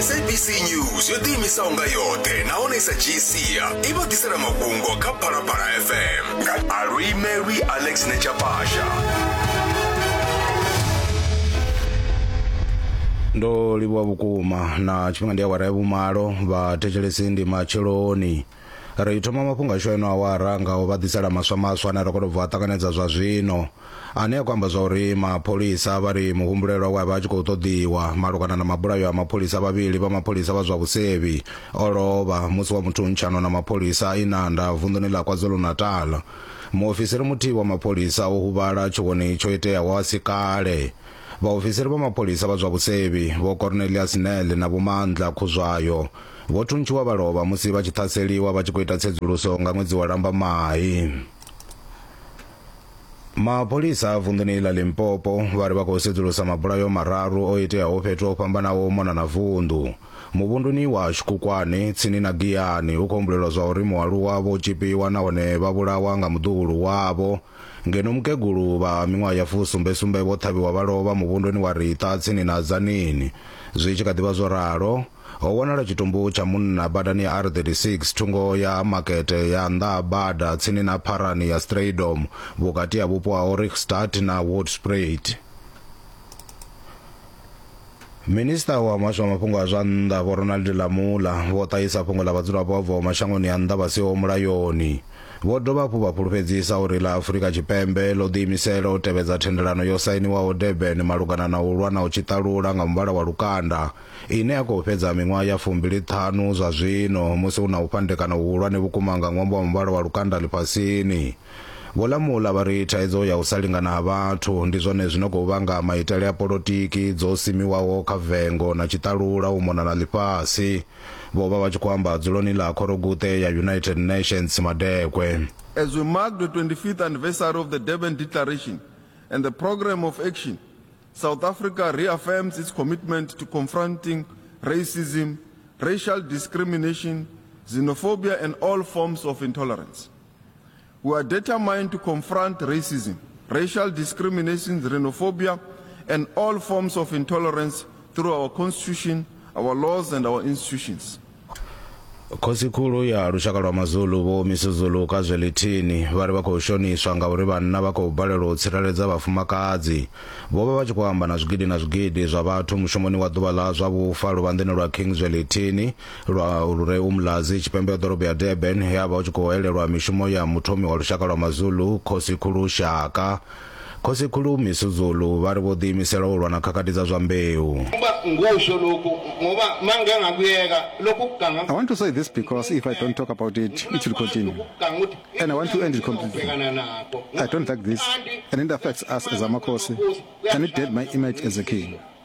sabc news yo ḓiimisaho nga yoṱhe nahone i sa dzhii sia i vha ḓisela mafhungo kha phalaphala fm nga aluimelwi alex nechapasha ndo livhuwa vhukuma na tshifhinga ndi awara ya vhumalo vha thetshelesi ndi matsheloni ri thoma mafhungo ashu eno awara nga u vha ḓisela maswa maswa ane ra khou tou bva a ṱanganedza zwa zwino ane a khou amba zwa uri mapholisa vha ri muhumbulelwa we a vha a tshi khou ṱoḓiwa malugana na mabulayo a mapholisa vhavhili vha mapholisa vha zwa vhusevhi o lovha musi wa muthuntshanwa na mapholisa a inanda vunḓuni ḽa kwazulu-natal muofisiri muthihi wa mapholisa o huvhala tshiwoni tsho iteaho a si kale Vhaofisiri vha mapholisa vha zwa vhusevhi, Vho Cornelius Nel na Vho Mandla Khuzwayo, vho thuntshiwa vha lovha musi vha tshi ṱhaseliwa vha tshi khou ita tsedzuluso nga ṅwedzi wa Lambamai. Mapholisa a vunḓuni ḽa Limpopo vha ri vha khou sedzulusa mabulayo mararu o iteaho fhethu ho fhambanaho u mona na vunḓu. Muvhunduni wa Shkukwane, tsini na Giyani, hu khou humbulelwa zwa uri mualuwa vho tzhipiwa nahone vha vhulawa nga muḓuhulu wavho, Ngeno mukegulu vha miṅwaha ya fusumbe-sumbe vho ṱhavhiwa vha lovha muvhunduni wa Riṱa tsini na Tzaneen. Zwi tshi kha ḓi vha zwo ralo, ho wanala tshitumbu tsha munna badani ya R36 thungo ya makete ya nnḓa ha bada tsini na pharani ya Strydom vhukati ha vhupo ha Ohrigstad na Hoedspruit. Minista wa muhasho wa mafhungo a zwa nnḓa Vho Ronald Lamola vho ṱahisa fhungo ḽa vhadzulapo vha bvaho mashangoni a nnḓa vha siho mulayoni. Vho dovha hafhu vha fhulufhedzisa uri ḽa Afurika Tshipembe ḽo ḓiimisela u tevhedza thendelano yo sainiwaho Durban malugana na u lwa na u tshiṱalula nga muvhala wa lukanda ine ya khou fhedza miṅwaha ya fumbili ṱhanu zwa zwino musi hu na u fhandekana huhulwane vhukuma nga ṅwambo wa muvhala wa lukanda ḽifhasini. Vho Lamula vha ri thaidzo ya u sa lingana ha vhathu ndi zwone zwi no khou vhanga maitele a polotiki dzo simiwaho kha vengo na tshiṱalula u mona na ḽifhasi. Vho vha vha tshi khou amba dzuloni ḽa Khoroguṱe ya United Nations Madekwe. As we mark the 25th anniversary of the Durban Declaration and the Programme of Action, South Africa reaffirms its commitment to confronting racism, racial discrimination, xenophobia and all forms of intolerance. We are determined to confront racism, racial discrimination, xenophobia, and all forms of intolerance through our constitution, our laws, and our institutions. khosikhulu ya lushaka lwa mazulu vho misuzulu ka zwelithini vha ri vha khou shoniswa ngauri vhanna vha khou balelwa u tsireledza vhafumakadzi vho vha vha tshi khou amba na zwigidi na zwigidi zwa vhathu mushumoni wa ḓuvha ḽa zwa vhufa luvhanḓeni lwa king zwelithini lwa lure umlazi tshipembe ya ḓorobo ya durban he a vha u tshi khou elelwa mishumo ya muthomi wa lushaka lwa mazulu khosikhulu shaka khosikhulu misuzulu vha ri vho ḓiimisela u lwa na khakhathi dza zwa mbeu I want to say this because if I don't talk about it, it will continue. And I want to end it completely. I don't like this, and it affects us as Amakosi, and it dead my image as a king.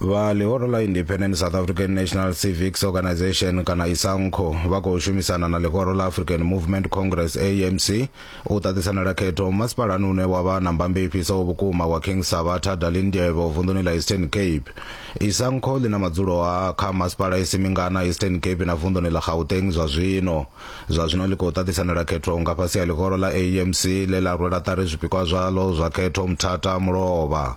vha ḽihoro ḽa independent south african national civics organization kana isankho vha khou shumisana na ḽihoro ḽa african movement congress amc u ṱaṱisanela khetho masipalani une wa vha na mbambe i fhisaho vhukuma wa king sabatha dalindyebo vunḓuni ḽa eastern cape isankho ḽi na madzulo a kha masipala i si mingana eastern cape na vunḓuni ḽa gauteng zwa zwino zwa zwino ḽi khou ṱaṱisanela khetho nga fhasi ha ḽihoro ḽa amc ḽe ḽa rwela ṱari zwipikwa zwaḽo zwa khetho mthata mulovha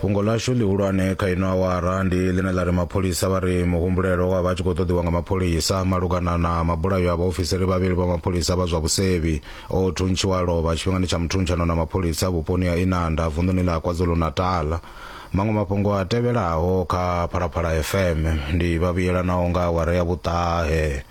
fhungo ḽashu ḽihulwane kha ino awara ndi ḽine ḽa ri mapholisa vha ri muhumbulelo wa vha tshi khou ṱoḓiwa nga mapholisa malugana na mabulayo a vhaofisiri vhavhili vha mapholisa vha zwa vhusevhi o thuntshiwa lovha tshifhingani tsha muthuntshanwa na mapholisa vhuponi ha inanda vunḓuni ḽa kwazulu-natal maṅwe mafhungo a tevhelaho kha phalaphala fm ndi vhavhuyelanaho nga awara ya vhuṱahe